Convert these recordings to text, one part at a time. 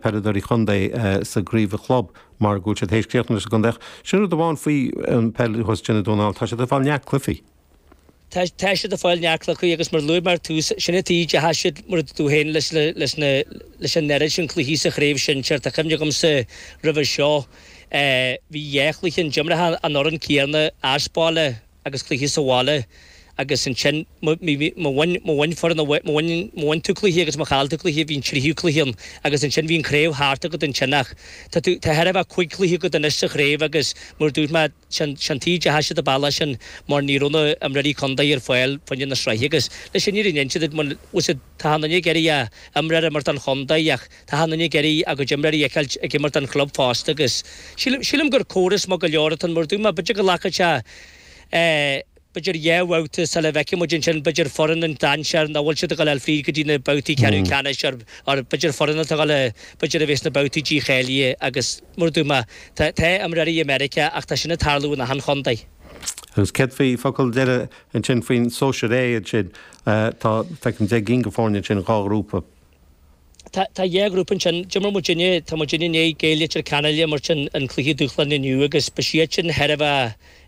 peileadóirí chontae sa gcraobh chlub mar go bhfuil siad théis críochnaithe leis an gcontae ach sin rud amháin faoi an peil thuas i nDún na nGall, tá siad ag fáil neart cluichí. Tá siad ag fáil neart cluichí agus mar a luaigh mé ar tús, sin an taobh dearfach dó mar a dúirt tú féin leis na leis an oiread sin cluichí sa chraobh sinsear, tá cuimhne agamsa roimhe seo bhí dhá chluiche ann d'imir tú an fhoireann céanna as baile, agus cluichí sa bhaile agus ansin má bhain foireann, má bhain tú cluiche agus má chaill tú cluiche bhíodh an tríú cluiche ann agus ansin bhí an chraobh thart agat ansin ach tá tú, tá ar a laghad cúig chluiche agat anois sa chraobh agus mar a dúirt mé, sin, sin taobh deas de ar bhealach sin mar ní raibh na h-imreoirí contae ar fáil fá choinne na sraithe agus leis sin níor fhan siad, mar, bhuel siad, tá an chuid is fearr a imreoir imirt don chontae ach. Tá na Nigéaraí agus a gcuid imreoirí ag imirt don chlub fosta agus sílim gur córas maith go leor atá in Murduma. B'fhéidir go nglacfaidh sé, b'fhéidir, dhá bhabhta sula bhfeicfidh muid ansin, b'fhéidir, foireann an dainséir nach bhfuil siad ag dul fríd go dtí na babhtaí ceathrú ceannais or b'fhéidir foireann atá ag dul, b'fhéidir, a bheith sna babhtaí dícháilithe agus Murduma. Tá imreoirí i Meiriceá ach tá sin ag tarlú in achan chontae. Agus céard faoi focal deiridh ansin faoin sóisear A ansin? Tá, feicim, deich gcinn d'fhoirne ansin, dhá ghrúpa. Tá dhá ghrúpa ansin. D'imir muid inné, tá muidinne i ndiaidh Gaeil Leitir Ceanainn a imirt i gcluiche dúshláin inniu agus beidh siadsan ann nó thart fá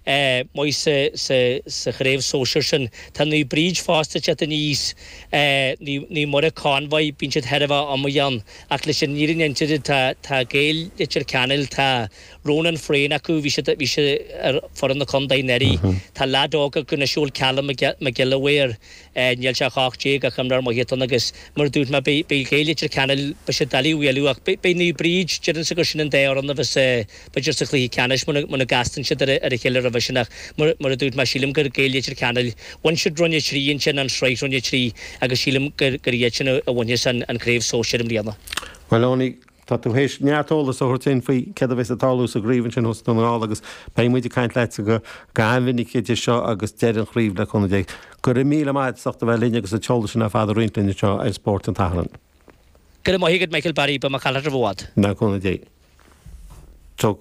dtaobh de sa chraobh sóisear sin. Tá Naomh Bríd fosta ag teacht aníos, Naomh Muire, Convoy, bíonn siad thart i gcónaí ann ach leis an fhírinne a inse tá Gaeil Leitir Ceanainn, tá Ronan Frain acu, bhí sé ar foireann na contae anuraidh, tá leaid óg acu anois a bhfuil Callum Mac Giolla Mhaoir, Níl sé ach 18 ach imreoir maith atá ann agus mar a dúirt mé, beidh Gaeil Leitir Ceanainn, beidh siad doiligh a bhualadh ach beidh Naomh Bríd, deirimse gur sin an dá fhoireann a bheas b'fhéidir sa chluiche ceannais muna gcastann siad ar a chéile roimhe sin ach mar a dúirt mé, sílim gur Gaeil Leitir Ceanainn, bhain siad Roinn 3 ansin, an Sraith Roinn 3, agus sílim gur iadsan a bhainfeas an Craobh Sóisir i mbliana. Bhuel Eoin, Tá tú théis neart eolas a thabhairt dúinn faoi céard a bheas ag tarlú sa gcraobh ansin thuas i nDún na nGall agus beidh muid ag caint leatsa go han-mhinic idir seo agus deireadh na craoibhe le cúnamh Dé. Go raibh míle maith agat as ucht a bheith linn agus an t-eolas sin ar fad a roinnt linn anseo ar Spórt an tSathairn. Go raibh maith agat Michael Barry, beidh mé ag caint leat roimh i bhfad. Le cúnamh Dé. Go.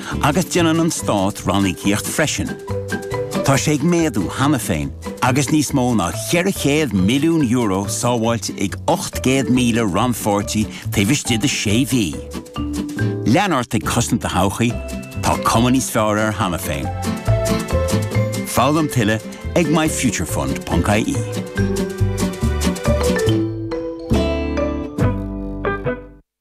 Agus déanann an stát ranníocaíocht freisin. Tá sé ag méadú cheana féin agus níos mó ná €400 milliún sábháilte ag 800,000 rannpháirtí taobh istigh de sé mhí. Lean ort ag cosaint do thodhchaí, tá cuma níos fearr air cheana féin. Foghlaim tuilleadh ag myfuturefund.ie.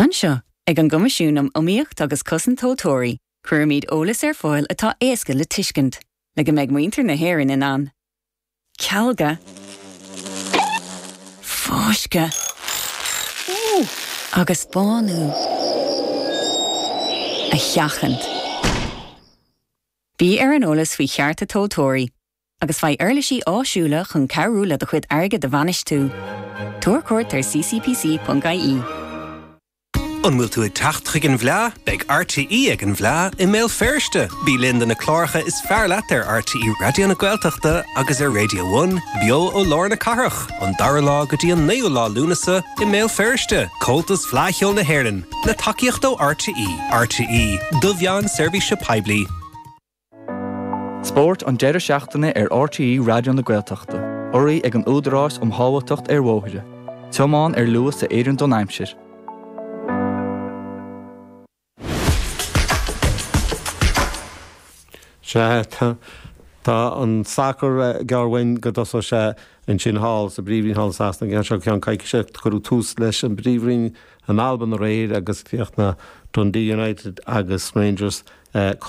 Anseo, ag an gCoimisiún um Iomaíocht agus Cosaint Tomhaltóirí, cuirimid eolas ar fáil atá éasca le tuiscint, le go mbeidh muintir na hÉireann in ann cealgadh, fáisceadh agus bánú a sheachaint. Bí ar an eolas faoi chearta tomhaltóirí. agus faigh uirlisí áisiúla chun cabhrú le do chuid airgid a bhainistiú. Tabhair cuairt ar ccpc.ie. An bhfuil tú ag teacht chuig an bhfleá? Beidh RTÉ ag an bhfleá i mBéal Feirste! Bí linn do na cláracha is fearr leat ar RTÉ Raidió na Gaeltachta agus ar Radio One, beo ó lár na cathrach, an dara lá go dtí an naoú lá Lúnasa i mBéal Feirste. Comhaltas Fleadh Cheoil na hÉireann, le tacaíocht ó RTÉ. RTÉ, do mheán seirbhíse poiblí. Spórt an deireadh seachtaine ar RTÉ Raidió na Gaeltachta, urraithe ag an Údarás um Shábháilteacht ar Bhóithre, tiomáin ar luas a oireann don aimsir. Sea, tá an sacar gar dúinn go dtosóidh sé ansin thall sa bPríomhroinn thall i Sasana an geábh seo, ceann coicíse. Cuireadh tús leis an bPríomhroinn in Albain aréir agus chríochnaigh Dundee United agus Rangers cothrom.